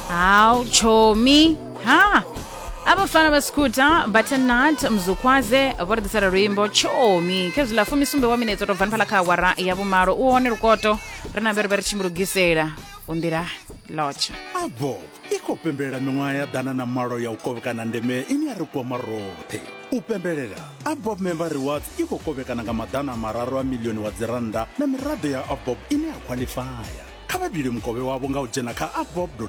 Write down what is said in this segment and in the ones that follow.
hawu chomi ha abafana basikhutha bathenat mzukwaze vho ri ḓisela luimbo chomi khezwi ḽa fumisumbe wa minetse to bvani phala kha awara ya vhumalo u hone lukoto ri na vheri vha ri tshi mu lugisela u nḓila lotsha abo i khou pembelela miṅwaha ya ḓana na malo ya u kovhekana ndeme ine ya ri kwama roṱhe u pembelela abob member rewards i khou kovhekana nga maḓana mararu a milioni wa dzirannda na miraḓo ya abob ine ya khwaḽifaya kha vha dule mukovhe wavho nga u dzhena kha abob co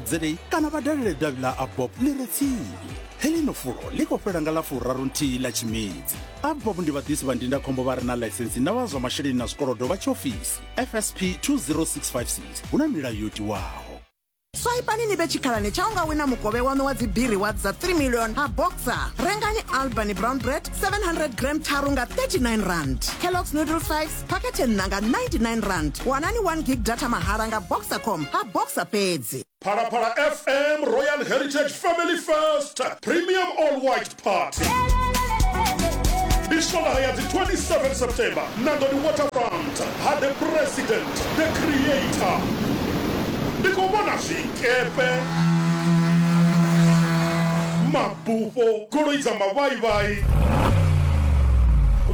za kana vha dalele davhi ḽa abob ḽi re tsini heḽino fulo ḽi khou fhela nga ḽa furaru nthihi ḽa tshimedzi abob ndi vhaḓisi vha ndindakhombo vha re na ḽaisensi na vha zwa masheleni na zwikolodo vha tshiofisi fsp 20656 hu na milayo yo tiwaho swaipani ni vhe tshikhalani tsha u nga wina mukovhe waṋu wa dzibiri wa dza 3 million ha boxer rengani albany brown bread 700 gram tharu nga 39 rand kellogs noodle 5 phakhethe nṋa nga 99 rand wanani 1 gig data mahala nga boxercom ha boxer fhedzi Phalaphala FM Royal Heritage Family Fest Premium All White party ndi swondaha ya dzi 27 september nangoni waterfront ha the president the creator ndi khou vhona zwikepe mabufho goloi dza mavhaivhai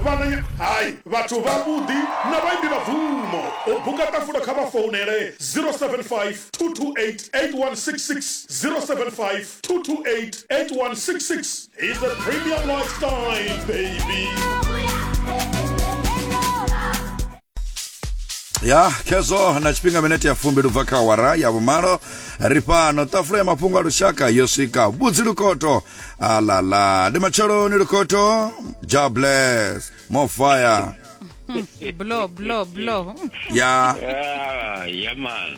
vhananya hai vhathu vhavhuḓi na vhaimbi vha bvumo u buka ṱafula kha vha founele 075 228 8166 075 228-8166 is the premium lifestyle baby ya khezwo na tshifhinga minete ya fumbi lubva kha wara ya vhumalo ri fhano ṱafula ya mafhungo a lushaka yo swika vhudzi lukoto alala ndi matsheloni lukoto ja bless more fire blow blow blow ya Ah, yeah man.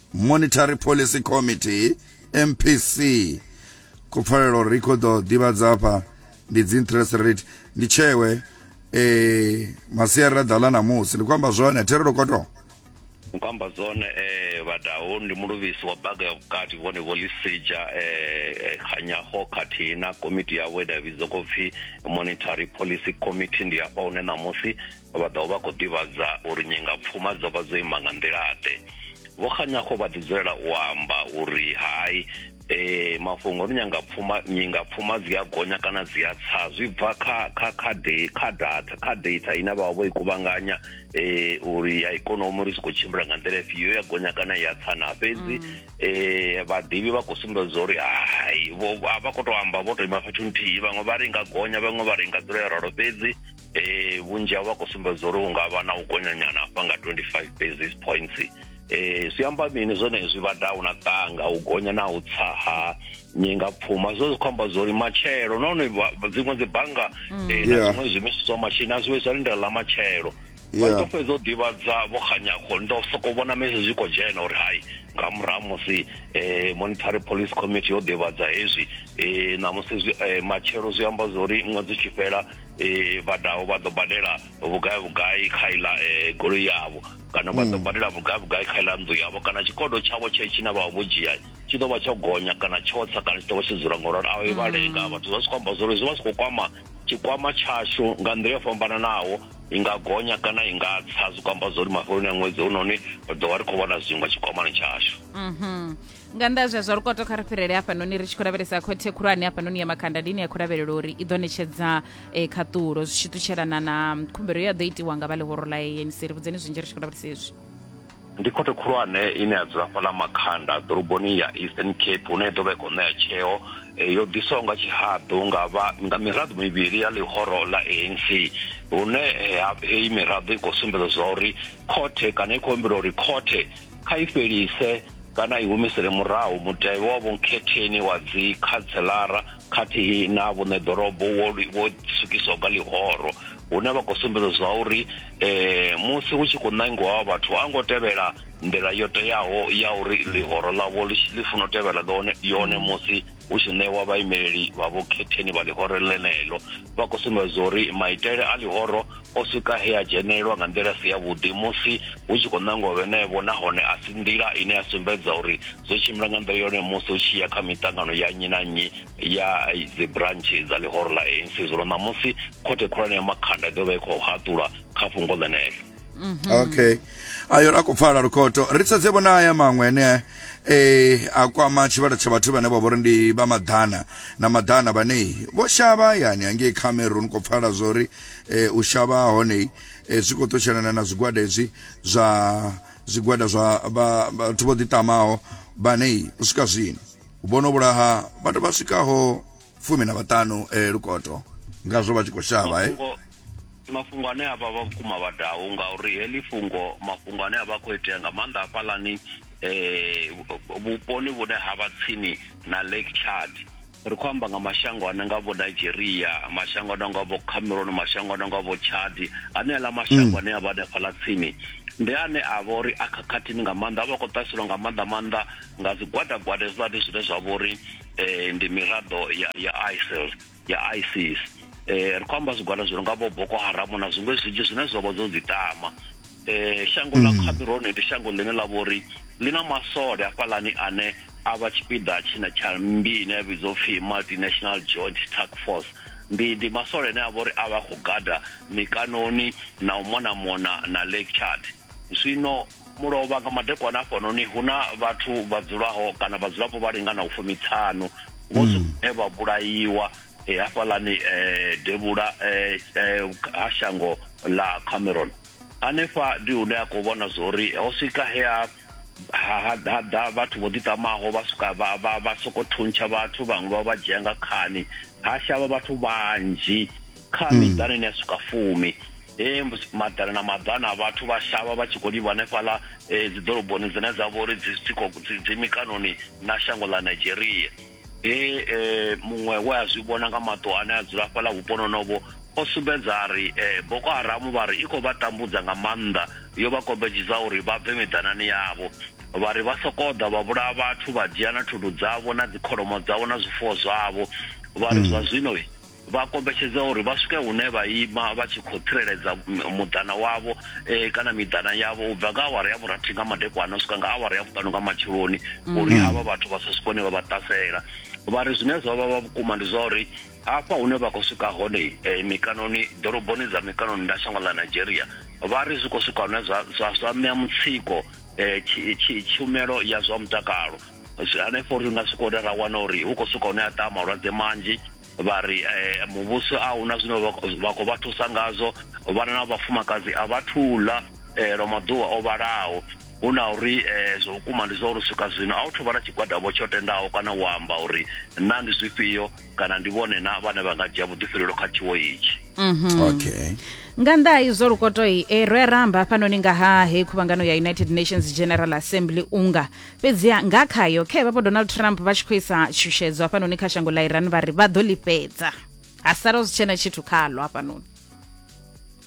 monetary policy committee mpc khou pfalela uri i khou ḓo ḓivhadza hafha ndi dzi interest rate ndi tshewe eh masiari ra ḓala namusi ndi khou amba zwone therelo koto ndi khou amba zwone eh vhadaho ndi muluvhisi wa baga ya vhukati vhone vho lisija eh khanyaho khathihi na komiti yavho ine ya vhidzwa khou pfi monetary policy committee ndi hafha hune ṋamusi vha ḓo vha khou ḓivhadza uri nyengapfuma dzo vha dzo ima nga nḓila-ḓe vho kganyaho vha ḓi dzulela u amba uri hai eh mafhungo ri nyanga pfuma nyinga pfuma dzi a gonya kana dzi a tsa zwi bva kha kha kha de kha data kha data ine vha vho i kuvhanganya eh uri ya ikonomi ri siko tshimbila nga nḓila ifhio ya gonya kana ya tsa na fhedzi mm. eh vhaḓivhi vha khou sumbedza uri hai vho vha khou tou amba vho tou ima fhethu nthihi vhaṅwe vha ri nga gonya vhaṅwe vha ri nga dzula ya ralo fhedzi eh, vhunzhi havho vha khou sumbedza uri unga vha na u gonyanyana hafha nga 25 basis points eh zwi amba mini zwone zwi vha down a tanga u gonya na u tsa ha nyinga pfuma zwo zwi khomba zwo ri matshelo nahone dziṅwe dzi banga mm. eh na zwiṅwe zwi misiso machine a zwi zwa lindela la matshelo vha to fhedza u ḓivhadza vho khanyakho ndo soko vhona mese zwi kho dzhena uri hai nga murahu musi eh monetary police committee yo ḓivhadza hezwi eh na musi eh, matshelo zwi amba zwo ri ṅwedzi tshi fhela eh, vha daho vha ḓo badela vhugai vhugai kha iḽa eh, goloi yavho kana vha ḓo mm. badela vhugai vhugai kha iḽa nnḓu yavho kana tshikodo tshavho tshe tshine vha vho dzhia tshi ḓo vha tsho gonya kana tsho tsa kana tshi ḓo vha tshi dzula ngoralo a i vha lenga mm. vhathu zwa si khou amba zwori zwi vha zwi khou kwama tshikwama tshashu nga nḓila yo fhambananaho i nga gonya kana i nga tsa zwi kwamba zwa uri mafheloni a ṅwedzi hunoni ri ḓo vha ri khou vhona zwiṅwe tshikwamani tshashu mhm. nga nnḓa zwe zwa lukoto kha ri fhirele hafhanoni ri tshi khou lavhelesa khothe khulwane hafhanoni ya makanda ndi ine ya khou lavhelela uri i ḓo ṋetshedza eh, khaṱulo zwi tshi ṱutshelana na khumbelo ye ya ḓo itiwa nga vha ḽihoro ḽa anc ri vhudzeni zwinzhi ri tshi khou lavhelesa hezwi ndi khothe khulwane ine ya dzula fhaḽa makhanda ḓoroboni ya eastern cape hune i ḓo vha i khou ṋea tsheo eh, yo ḓiswaho nga tshihaḓu nga vha- nga miraḓo mivhili ya ḽihoro ḽa anc hune eh, ha- heyi miraḓo i khou sumbedza zwa uri khothe kana i khou humbela uri khothe kha i fhelise kana i humisele murahu mutevhe wa vhunkhetheni wa dzikhanselara khathihi na vhuṋe ḓorobo wo wo swikiswa nga ḽihoro hune vha khou sumbedza zwa uri um musi hu tshi khou ṋangiwa wa vhathu a ngo tevhela nḓila yo teaho ya uri ḽihoro ḽavho ḽi funa u tevhela ḽone yone musi hu tshi ṋewa vhaimeleli vha vhukhetheni vha ḽihoro ḽeneḽo vha khou sumbedza uri maitele a ḽihoro o swika he a dzhenelwa nga nḓila si yavhuḓi musi hu tshi khou ṋangwa vhenevho nahone a si nḓila ine ya sumbedza uri zwo tshimbila nga nḓila yone musi hu tshi ya kha miṱangano ya nnyi na nnyi ya dzibrantshe dza ḽihoro ḽa anc zwino ṋamusi khothe khulwane ya makhanda i ḓo vha i khou haṱula kha fhungo ḽeneḽo mhm. okay ayo ra khou pfala lukhoto ri sedze vhona aya maṅwe ane eh a kwama tshivhalo tsha vhathu vhane vha vhori ndi vha maḓana na maḓana vhane vho shavha yani hangei cameron khou pfala zwori eh u shavha hone eh, zwi khou ṱutshelana na zwigwada hezwi zwa zwigwada zwa vhathu vho ḓiṱamaho vhane u swika zwino vhono vhulaha vhathu vha swikaho fumi na vhaṱanu eh, lukoto ngazwo vha tshi khou shavha eh ndi mafhungo ane avha vha vhukuma vhadau ngauri heḽi fhungo mafhungo ane avha khou itea nga maanḓa hafhaḽani um vhuponi vhune ha vha tsini na lake chad ri khou amba nga mashango ane nga vho nigeria mashango ane nga vho cameron mashango ane nga vho chad ane aḽa mashango mm. ane a vha hanefhaḽa tsini ndi ane a vha uri a khakhathini nga maanḓa a vha khou ṱaselwa nga maanḓa maanḓa nga zwigwadagwada hezwiḽani zwine zwa vha uri um ndi miraḓo ya isil ya isis eh, ri khou amba zwigwada zwi nonga vho boko haramu na zwiṅwe zwinzhi zwine zwa vha zwo dzitama eh, shango ḽa mm. khabirone ndi shango ḽine ḽa vho uri ḽi na masole afhaḽani ane a vha tshipiḓa tshina tsha mmbi ine ya vhidzwa upfhi multinational joint task force ndi ndi masole ane a vha uri a vha khou gada mikanoni na u mona mona na lake chart zwino Mulovha nga madekwana hafhanoni hu na vhathu vha dzulaho kana vhadzulapo vha linganaho fumiṱhanu vho mm. zwine vha vhulaiwa eh, hafhaḽani eh, devhula eh, ha shango ḽa cameron hanefha ndi hune a khou vhona zwori ho swika he a haḓa vhathu vho ḓiṱamaho vha swika vha soko thuntsha vhathu vhaṅwe vha vha dzhia nga khani ha shavha vhathu vhanzhi kha mm. miḓana ine ya swika fumi e maḓana na maḓana a vhathu vha shavha vha tshi khou livha hanefhaḽa e, dzi ḓoroboni dzine dza vha uri dzi mikanoni na shango ḽa nigeria he e, muṅwe we a zwi vhona nga maṱo ane a dzula fhaḽa vhuponi honovho o sumbedza a ri e, boko haramu vha ri i khou vha tambudza nga maanḓa yo vha kombetshedza uri vha bve miḓanani yavho vha ri vha sokou ḓa vha vhulaya vhathu vha dzhia na thundu dzavho na dzikholomo dzavho na zwifuwo zwavho vha ri mm. zwa zwino Vha kombetshedzea uri vha swike hune vha ima vha tshi khou tsireledza muḓana wavho kana miḓana yavho u bva nga awara ya vhurathi nga madekwana u swika nga awara ya vhuṱanu nga matsheloni uri havha vhathu vha sa swike hune vha vha ṱasela. Vha ri zwine zwa vha vha vhukuma ndi zwa uri hafha hune vha khou swika hone mikanoni ḓoroboni dza mikanoni nda shango ḽa Nigeria vha ri zwi khou swika hune zwa zwa zwa ṋea mutsiko tshumelo ya zwa mutakalo hanefho ri nga swika hune ra wana uri hu khou swika hune ha ṱaha malwadze manzhi. vha ri eh, muvhuso a huna zwine vha khou vha thusa ngazwo vhana na vhafumakadzi a vha thula eh, lwa maḓuvha o vhalaho hu na uri eh, zwa vhukuma ndi zwa uri swika zwino a u thuvha na tshigwadavho tsho tendaho kana u amba uri na ndi zwifhio kana ndi vhone na vhane vha nga dzhia vhuḓifhilelo kha tshiwo itshi mhm. okay nga nnḓa ha izwo lukotoi e eh, ro ya ramba hafhanoni nga ha hei khuvhangano ya united nations general assembly unga Fhedziha nga khayo, khe vhapo Donald Trump vha tshi khou isa tshutshedzo hafhanoni kha shango ḽa Iran vha ri vha ḓo ḽi fhedza. Ha sala zwi tshena tshithu khaḽo hafhanoni.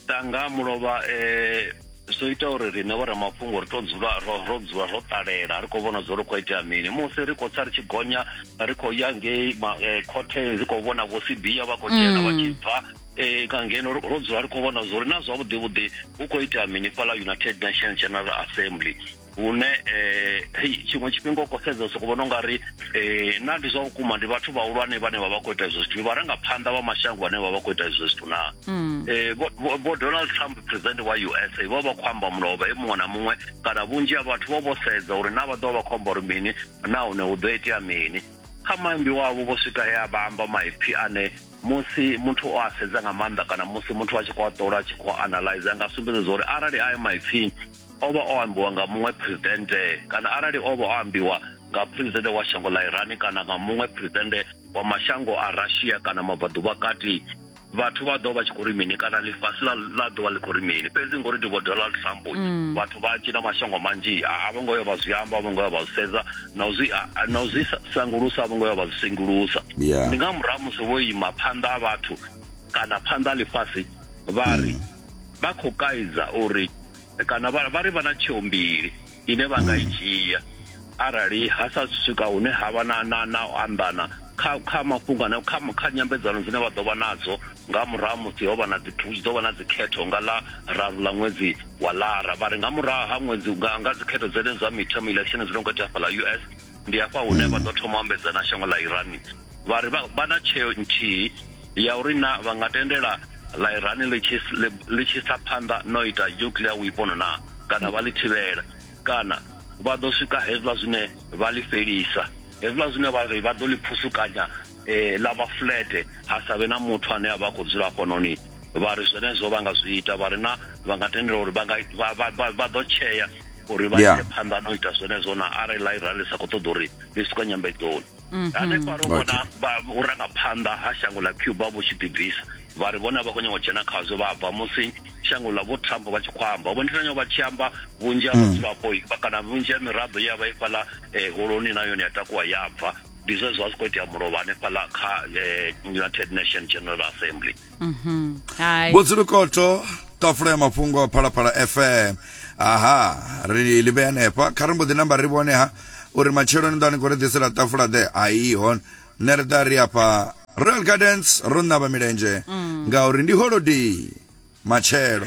Tanga mulovha eh zwo ita uri riṋe vho ramafhungo ri to dzula ro ro dzula ro ṱalela ri khou vhona zwo ri khou itea mini musi ri khou tsa ri tshi gonya ri khou ya ngei eh, khothe ri khou vhona vho sibia vha khou dzhena vha tshi mm. bva eh, nga ngeno ro dzula ri khou vhona zwo ri na zwavhuḓi vhuḓi hu khou itea mini fhala United Nations General Assembly hune hei tshiṅwe tshifhinga u khou sedza soko vhona unga ri um na ndi zwa vhukuma ndi vhathu vhahulwane vhane vha vha khou ita izwo zwithu ndi vharangaphanḓa vha mashango vhane vha vha khou ita izwo zwithu naa um vho donald trump president wa u s a vho vha khou amba mulovha e muṅwe na muṅwe kana vhunzhi ha vhathu vho vho sedza uri na vha ḓovha vha khou amba uri mini nahone hu ḓo itea mini kha maimbi wavho vho swika he a vha amba maipfi ane musi muthu o a sedza nga maanḓa kana musi muthu a tshi khou a ṱola a tshi khou analyze a nga sumbedza uri arali ayo maipfi o vha o ambiwa nga muṅwe presidente kana arali o vha o ambiwa nga presidente wa shango ḽa irani kana nga muṅwe presidente wa mashango a russia kana mabvaḓuvha kati vhathu vha ḓo vha tshi khou ri mini kana ḽifhasi ḽa ḽa ḓo vha ḽi khou ri mini fhedzi ngori ndi vho donald trump mm. vhathu vha tshi na mashango manzhi a vho ngo yo vha zwi amba a vho ngo yo vha zwi sedza na u zwi na u zwi sangulusa a vho ngo yo vha zwi sengulusa ndi nga murahu musi vho ima phanḓa a vhathu kana phanḓa a ḽifhasi vha ri mm. vha khou kaidza uri kana vha vha ri vha na tsheo mbili ine vha nga i hmm. dzhia arali ha sa swika hune ha vha na na na u anḓana kha kha mafhungo ane kha kha nyambedzano dzine vha ḓo vha nadzo nga murahu musi ho vha na dzi ḓo vha na dzi khetho nga ḽa raru ḽa ṅwedzi wa lara vha ri nga murahu ha ṅwedzi nga nga dzi khetho dzene dza midterm election dzi no khou itea hafha ḽa US ndi hafha hune hmm. vha ḓo thoma ambedzana shango ḽa Iran vha ri vha na tsheo nthihi ya uri na vha nga tendela ḽa Iran ḽi tshi ḽi tshi sa phanḓa no ita nuclear weapon na kana vha ḽi thivhela kana vha ḓo swika hezwiḽa zwine vha ḽi fhelisa hezwiḽa zwine vha ri vha ḓo ḽi phusukanya eh, ḽa vha fulete ha sa vhe na muthu ane a vha khou dzula fhanoni vha ri zwenezwo vha nga zwi ita vha ri na vha nga tendela uri vha ḓo tshea uri vha ite phanḓa no ita zwenezwo na arali ḽa Iran ḽi sa khou ṱoḓa uri ḽi swika nyambedzoni mhm. hanefha ro vhona vhurangaphanḓa ha shango ḽa cuba vhu tshi ḓibvisa vha ri vhona vha khou nyanga u dzhena khazwo vha bva musi shango ḽa vho trump vha tshi khou amba vho nditanya vha tshi amba vhunzhi ha vhadzulapo hmm. kana vhunzhi ha miraḓo ya vha i fhaḽa eh, holoni na yone ya takuwa ya bva ndi zwe zwa zwi khou itea mulovha hanefhaḽa kha eh, united nation general assembly Mhm. Hai. vhudzulukoto tafula ya mafhungo phalaphala fm aha ri ḽi vhea hanefha kha ri mbo ḓi namba ri vhone ha uri matshelo ni ḓa ni khou ri ḓisela tafula ḓe ai hon nṋe ri ḓa ri afha royal gardens ro ṋavha milenzhe ngauri ndi holodei matshelo